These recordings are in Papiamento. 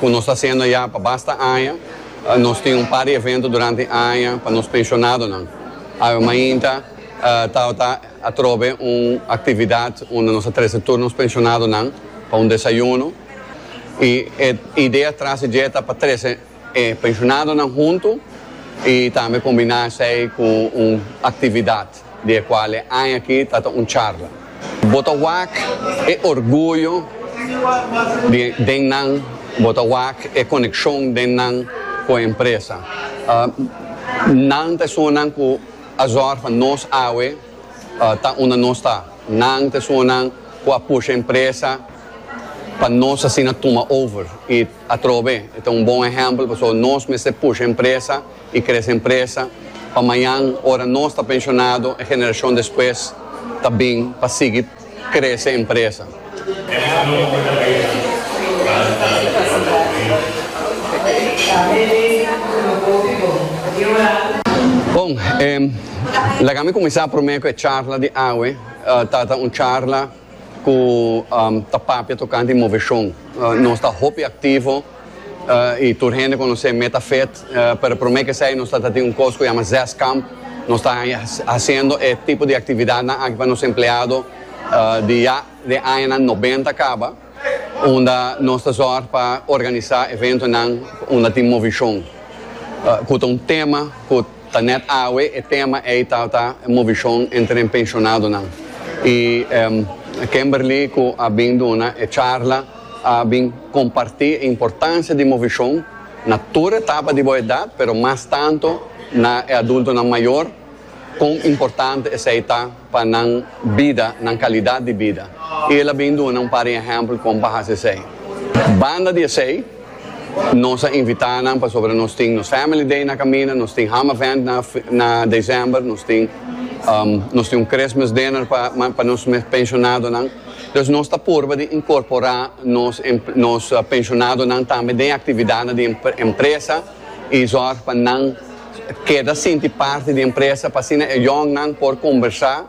Cu nos ta hacendo ya pa basta aña. Nos tin un par di evento durante aña pa nos pensionadonan. Awe mainta tabata atrobe un actividad unda nos a trece tur nos pensionadonan pa un desayuno. Y e idea tras di dje ta pa trece e pensionadonan hunto y tambe combina esey cu un actividad. di e kual e aña aki ta ta un charla. Bo ta wak e orguyo di den nan, bo ta wak e konekshon den nan ku e empresa. Nan ta esunnan ku a zòrg pa nos awe ta unda nos ta. Nan ta esunnan ku a pusha e empresa pa nos asina tuma over i atrobe e ta un bon ehèmpel pasobra nos mester pusha e empresa. y crece empresa pa mañan ora nos ta pensionado e generacion despues ta bin pa sigui crece empresa. Bon, laga mi cuminsa prome cu e charla di awe, tata un charla. ku ta papia tokante moveshon. Nos ta hopi aktivo i tur hende konosé Metafit, pero promé kesei nos ta ta tin un kos ku yama Zeskamp. Nos ta hasiendo e tipo di aktividatnan aki pa nos empleado di ya den añanan nobenta kaba, unda nos ta zòrg pa organisá eventonan unda tin moveshon ku ta un tema ku. Ta net awe e tema ey ta ta e movicion entre e pensionadonan. Y Kemberly cu a bin duna e charla a bin comparti e importancia di movicion na tur etapa di bo edad, pero mas tanto na e adultonan mayor, con importante esey ta. pa nan bida, nan kalidat di bida, i el a bin duna un par di ehèmpel kon pa hasi esei. Banda di esei, nos a invitá nan pasobra nos tin nos Family Day na kaminda, nos tin Ham Event na na desèmber, nos tin nos tin un Christmas Dinner pa pa nos mes penshonadonan. Dus nos ta purba di inkorporá nos nos penshonadonan tambe den aktividatnan di empresa. y zorg pa nan keda sinti parti di empresa pa asina e yòngnan por kombersá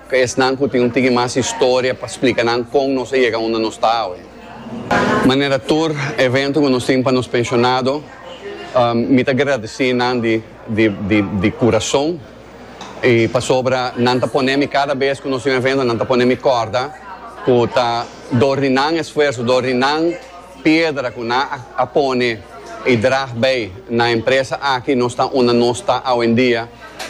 ku esnan ku tin un tiki mas historia pa splika nan kon nos a yega unda nos ta awe. Manera tur evento ku nos tin pa nos penshonado, mi ta gradesí nan di kurason y pasobra nan ta pone mi kada bes ku nos tin un evento nan ta pone mi kòrda ku ta dor di nan esfuerso, dor di nan. Piedra cu nan a pone y drag bay na empresa aki nos ta unda nos ta awendia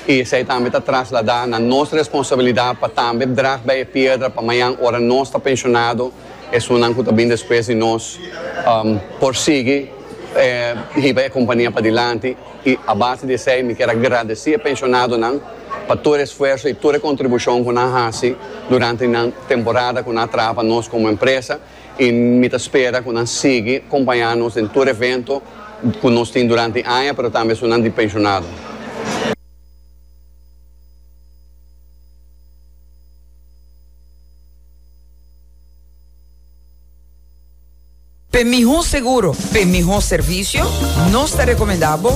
y esey tambe ta traslada na nos responsabilidad pa tambe drag bay e piedra pa mayan ora nos ta pensionado esunnan cu ta bin despues di nos por sigui hiba e compania padilanti y a base di esey mi kier a gradeci e pensionadonan pa tur e esfuerzo y tur e contribucion cu nan haci durante nan temporada cu nan a traha pa nos como empresa. y mi ta spera cu nan sigui compaña nos den tur evento cu nos tin durante aña pero tambe esunnan di pensionado. P'e miho seguro, p'e miho servicio, nos ta recomenda bo